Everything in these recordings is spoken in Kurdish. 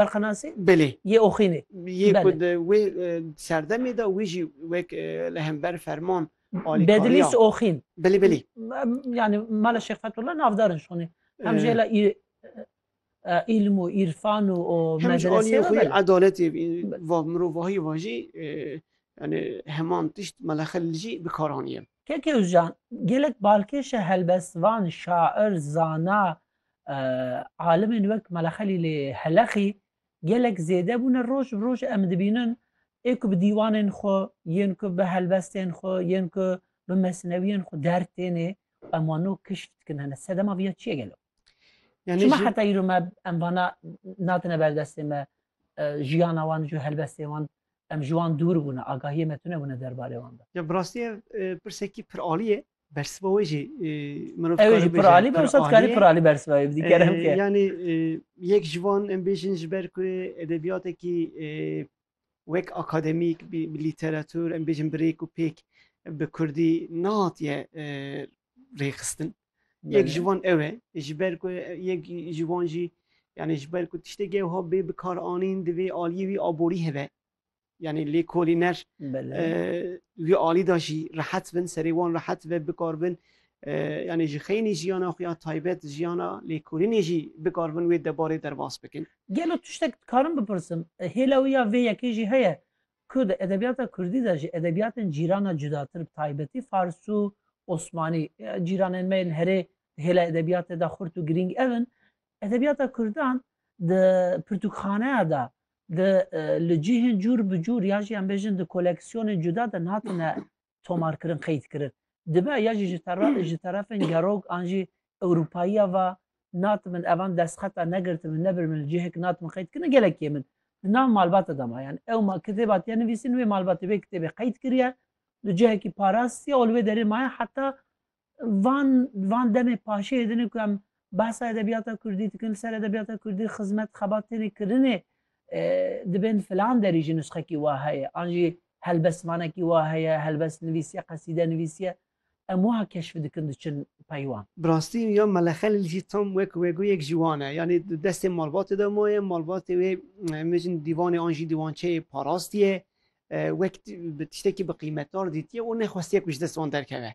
Berxanasî Belê. yê Oxînê. Yê ku Bele. di wê serdemê de wî jî wek li hember ferman alîkariya. Bedilîs Oxîn. Belê belê. Yanî mala Şêx Fethullah navdar in şonê. Hem ji hêla î îlm û îrfan û û Hem ji aliyê medresê xwe re yê bele. edaletê vî va mirovahiyê va jî yanî heman tişt mala Xelîl jî bi kar anîye. Keke Ozcan gelek balkêş e helbestvan, şair, zana, Alimên wek Mela Xelîlê Heleqî gelek zêde bûne roj bi roj em dibînin ê ku bi dîwanên xwe yên ku bi helbestên xwe yên ku bi mesnewiyên xwe der têne em wan no kişf dikin hene sedema viya çiye gelo Yani Çima heta îro me em vana natine berdestê me jiyana wan ji helbestê wan em ji wan dûr bûne agahiyê me tune bûne derbarê wan de. Ya bi rastî pirsekî pir alî ye Bersiva wê jî mirov Ew jî pir alî be wisa dikarî pir alî bersiva wê bidî kerem ke. Yanî yek ji van em bêjin ji ber ku edebiyatekî wek akademîk bi lîteratûr em bêjin bi rêk û pêk bi kurdî nehatiye rêxistin. Yek ji van ew e ji ber ku yek ji van jî yanî ji ber ku tiştekî ew ha bê bikaranîn divê aliyê wî aborî hebe. yani lêkolîner wî alî da jî rehet bin serê wan rehet ve bikar bin yani ji xeynî jiyana xwe ya taybet jiyana lêkolînê jî bikar bin wê debarê derbas bikin. Gelo tiştek dikarim bipirsim hêla wî ya vê yekê jî heye ku di edebiyata kurdî de ji edebiyatên cîrana cudatir bi taybetî fars û osmanî cîranên me yên herê di hêla edebiyatê de xurt û girîng ev in edebiyata kurdan di pirtûkxaneya de Di li cihên cûr bi cûr ya jî em bêjin di koleksiyonên cuda de nehatine tomarkirin, qeydkirin. Dibe ya jî ji terefên gerok an jî Ewropayiya va natibin evan destxeta negirtibin, nebiribin li cihek natibin qeydkirin gelek yên min di nav malbata de ma. Yan ew ma kitêba tê nivîsîn wê malbatê wê kitêbê qeydkiriye li cihekî parast ya û li wê derê maye heta Van van demê paşê din ku em behsa edebiyata Kurdî dikin, li ser edebiyata Kurdî xizmet xebat têne kirinê e, dibên filan derî jî nusxekî wa heye, an jî helbestvanekî wa heye, helbest nivîsiye, qesîde nivîsiye, em wiha keşf dikin diçin peywan. Bi rastî ya Mele Xelîl jî tam wek wegûyek ji wan e. Yanî di destê malbatê de maye, malbatê wê em bêjin dîvanê an jî dîwançeyê parastiye, e, wek bi tiştekî bi qîmetdar dîtiye û nexwestiye ku ji dest wan derkeve.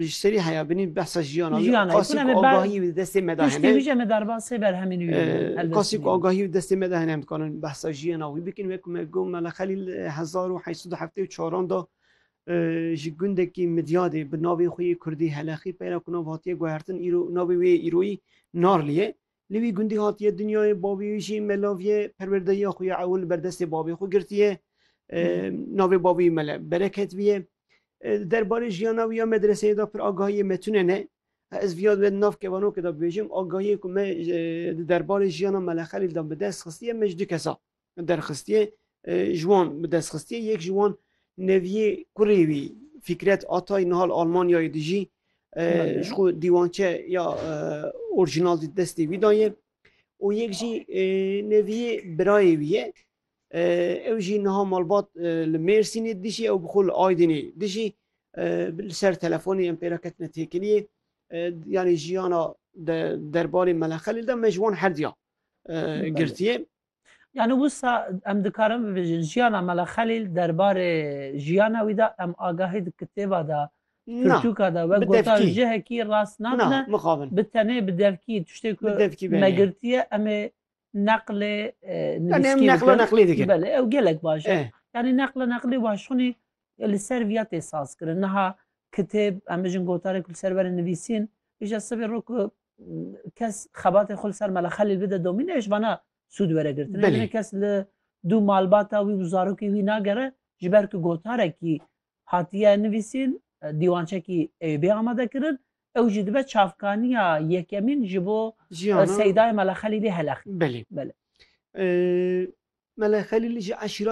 Ji serî heya binî behsa jiyana wî Jiyana, qasî kuna ku me ber- agahiyê wî di destê me de Piştî hene. wî jî em ê berban sê berhemên wî bidin. Ee, Helbestî Kasî ku bidin. agahiyê wî di destê me de hene em dikarin behsa jiyana wî bikin wek ku me got Mela Xelîl li hezar û heşt sed û heftê û çaran de e, ji gundekî Midyadê bi navê xwe yê Kurdî Helexî peyra ku nav hatiye guhertin îro navê wê yê îroyî Narlî ye. Li wî gundî hatiye dinyayê, bavê wî jî melav ye, perwerdehiya xwe ya ewil li ber destê bavê xwe girtiye. Navê bavê wî mele Bereket bûye. Derbarê jiyana wî ya medreseyê de pir agahiyê me tune ne. Ez viya di nav kevanokê de bibêjim, agahiyê ku me di derbarê jiyana Mele Xelîl de bi dest xistiye me ji du kes a. derxistî ji wan bi destxistî yek ji wan neviyê kurê wî Fîkret Atay nihal Almanyayê dijî ji xwe dîwançe ya orjinal di destê wî daye û yek jî neviyê birayê wî ye ew jî niha malbat li Mêrsînê dijî ew bi xwe li Aydinê dijî li ser telefonê em pêra ketine têkiliyê yanî jiyana derbarê Meleqelê de me ji wan herdiya girtiye. Yani wisa em dikarin bibêjin jiyana Mela Xelîl derbarê jiyana wî de em agahî di kitêba de Pirtûka de wek gota ji hekî rast nabine bi tenê bi devkî tiştê ku me girtiye em ê neqlê neqla neqlî dikin belê ew gelek baş e yanî neqla neqlî waxşonî li ser viya tê saz kirin niha kitêb em bijin gotarek li ser verê nivîsîn îşe sibê rok kes xebatê xul ser mela xelîl bide domîne êş vana sûd were girtin Belê. Yine kes li dû malbata wî û zarokê wî nagere ji ber ku gotarekî hatiye nivîsîn dîwançekî Eyûbê amade kirin ew jî dibe çavkaniya yekemîn ji bo Jiyana seydayê mela xelîlê helex Belê. Belê. Ee, Mele Xelîl ji eşîra